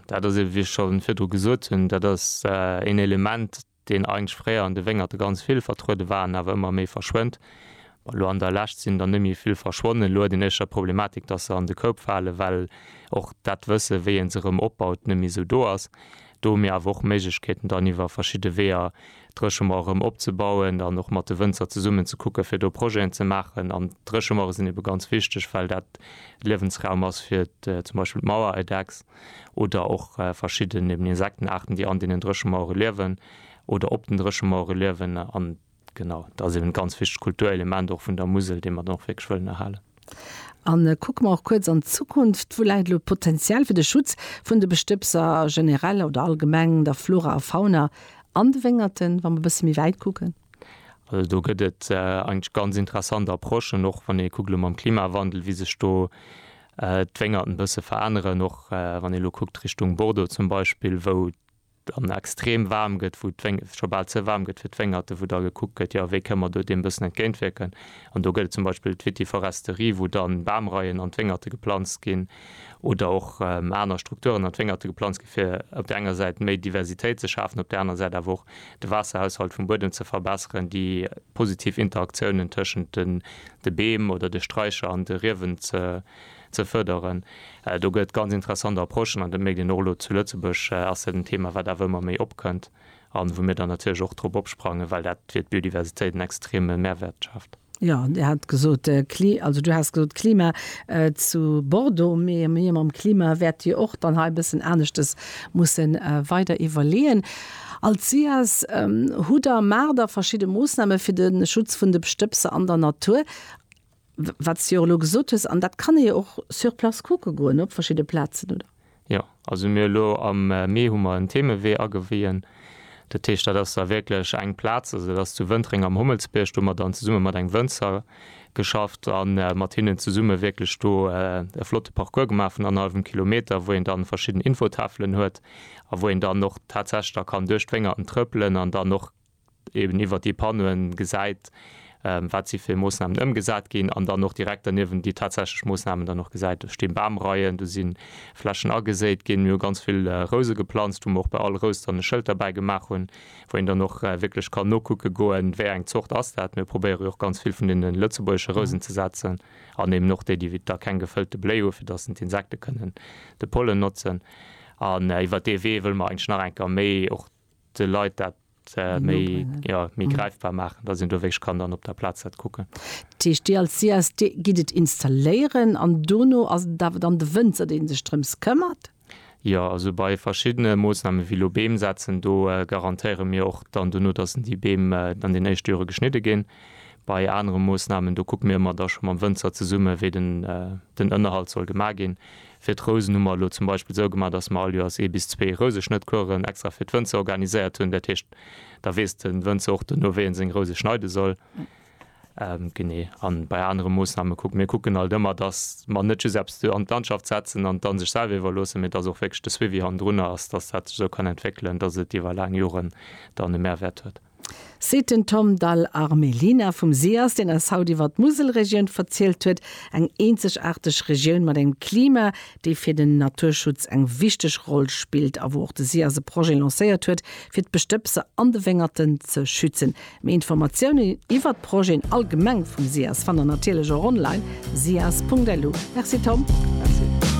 Dat ass eeben, wéi ech scho virdru gesot hunn, dat ass een Element, deen eigentlech fréier an de Wéngerte ganz vill vertruede war an awer ëmmer méi verschwënnt. Elo an der Lescht sinn der net méi vill verschwonnen. Elo huet een éischter d'Problematik, dass se an de Koup falen, well och dat Wëssen, wéi ee se erëm opbaut, net méi esou do ass. Do hu mir awer och Méiglechkeeten, dann iwwer verschidde Weeër Dréchemauer erëm opzebauen an och mat de Wënzer zesummen ze kucke fir do Projeten ze maachen. An Dréchemauere sinn ebe ganz wichteg, well dat Liewensraum ass fir zum Beispill d'Mauereidechs oder och verschidden eben Insektenaarten, déi an deenen Dréchemauere liewen oder op den Dréchemauere liewen. An genau, dat ass eben e ganz wichtegt Kulturelement och vun der Musel, dee mer dann och wierklech wëllen erhalen. A kucke mer och kuerz an d'Zukunft, Wou läit elo d'Potenzial fir de Schutz vun de Bestëbser generell oder allgemeng, der Flora a Fauna an de Wéngerten, wa mer e bësse méi wäit kucken? Also do gëtt et eigentlech ganz interessant Approchen, och wann ee kuckt elo mam Klimawandel, wéi sech do d'Wéngerten e bësse veränneren, och wann ee elo kuckt Richtung Bordeaux zum Beispill, wou dann extrem waarm gëtt, wou d'Wéng, et scho bal ze waarm gëtt fir d'Wéngerten, wou da gekuckt gëtt, jo wéi kënne mer do deem e bëssen entgéintwierken. An do gëtt et zum Beispill d'Vitiforesterie, wou dann Bamreien an d'Wéngerte geplanzt ginn oder och aner Strukturen an d'Wéngerte geplanzt ginn, fir op där enger Säit méi Diversitéit ze schafen, op där aner Säit awer och de Waasserhaushalt vum Buedem ze verbesseren, déi positiv Interaktiounen tëschent de Beem oder de Straicher an de Riewen ze ze fërderen. Do gëtt ganz interessant Approchen an dat mierkt een och elo. Zu Lëtzebuerg ass dat en Thema wat awer ëmmer méi opkënnt an wou mir dann natierlech och drop opsprangen, well dat fir d'Biodiversitéit en extreme Mehrwert schaaft. Jo, Dir hat gesot, Kli-, also Du has gesot Klima zu Bordeaux, mee mee mam Klima wäert Dir och dann hei e bëssen aneschtes musse weider iwwerleeën. Als SIAS hutt Der, maacht Der verschidde Moossname fir de Schutz vun de Stëbser an der Natur. Wat s de jo och elo gesot hues, an dat kann ee jo och sur place kucke goen op verschidde Plazen, oder? Jo, also mir elo am Mee hu mer en Themewee agewien. Dat heescht, dat ass da wierklech eng Plaz, also dat ass zu Wëntreng am Hommelsbierg, do hu mer dann zesumme mat engem Wënzer geschafft a mat hinnen zesumme wierklech do e flotte Parcours gemaach vun annerhallwem Kilometer, wou een dann verschidden Infotafelen huet a wou een dann och tatsächlech da kann duerch d'Wéngerten trëppelen an dann och eben iwwert déi Panneauen gesäit, wat si fir Moossnamen ëmgesat ginn, an dann och direkt derniewent déi tatsächlech Moossnamen dann och gesäit. Do sti Bamreien, do si Flächen ageséit ginn. Mir hu ganz vill Rouse geplanzt, wou mer och bei all Rous dann e Schëld derbäi gemaach hunn, wou een dann och wierklech kann nokucke goen, wéi eng Zort ass dat. Mir probéiere jo och ganz vill vun deene lëtzebuergesche Rousen ze setzen an eben och déi, déi da keng gefëllte Bléi hu, fir datt den d'Insekte kënnen de Pollen notzen. An iwwert dee Wee wëlle mer eigentlech nach eng Kéier méi och de Leit dat méi gräifbar maachen, datt een do wierklech kann dann op der Plaz dat kucken. Dat heescht, Dir als CSD gitt et installéieren an dono ass et awer dann de Wënzer, dee sech drëms këmmert? Jo, also bei verschiddene Moossnamen, wéi elo Beem setzen, do garantéiere mir och dann dono, datt déi Beem an den éischte Jore geschnidde ginn. Bei anere Moossnamen, do kucke mir ëmmer da scho mam Wënzer zesummen, wéi den Ënnerhalt soll gemaach ginn. Fir d'Rousen hu mer elo zum Beispill esou gemaach, datt mer all Joers ee bis zwee Rouseschnëttcouren extra fir d'Wënzer organiséiert hunn. Dat heescht, da weess de Wënzer och duerno, wéi en seng Rouse schneide soll. Genee. A bei anere Moossname kucke mir kucken alt ëmmer, datt mer net just eppes do an d'Landschaft setzen an et dann sech selwer iwwerloossen, mee datt och wierklech de Suivi hannendrunner ass, datt dat sech esou kann entwéckelen, datt et iwwer laang Joren dann e Mehrwäert huet. seet den Tom Dal Armelina vum SIAS, deen eis haut iwwer d'Muselregioun verzielt huet, eng eenzegaarteg Regioun mat engem Klima, dee fir den Naturschutz eng wichteg Roll spillt a wou och de SIAS e Projet lancéiert huet, fir d'Bestëbser an de Wéngerten ze schützen. Méi Informatiounen iwwer d'Projeten allgemeng vum SIAS fannt der natierlech och online, sias.lu. Merci Tom.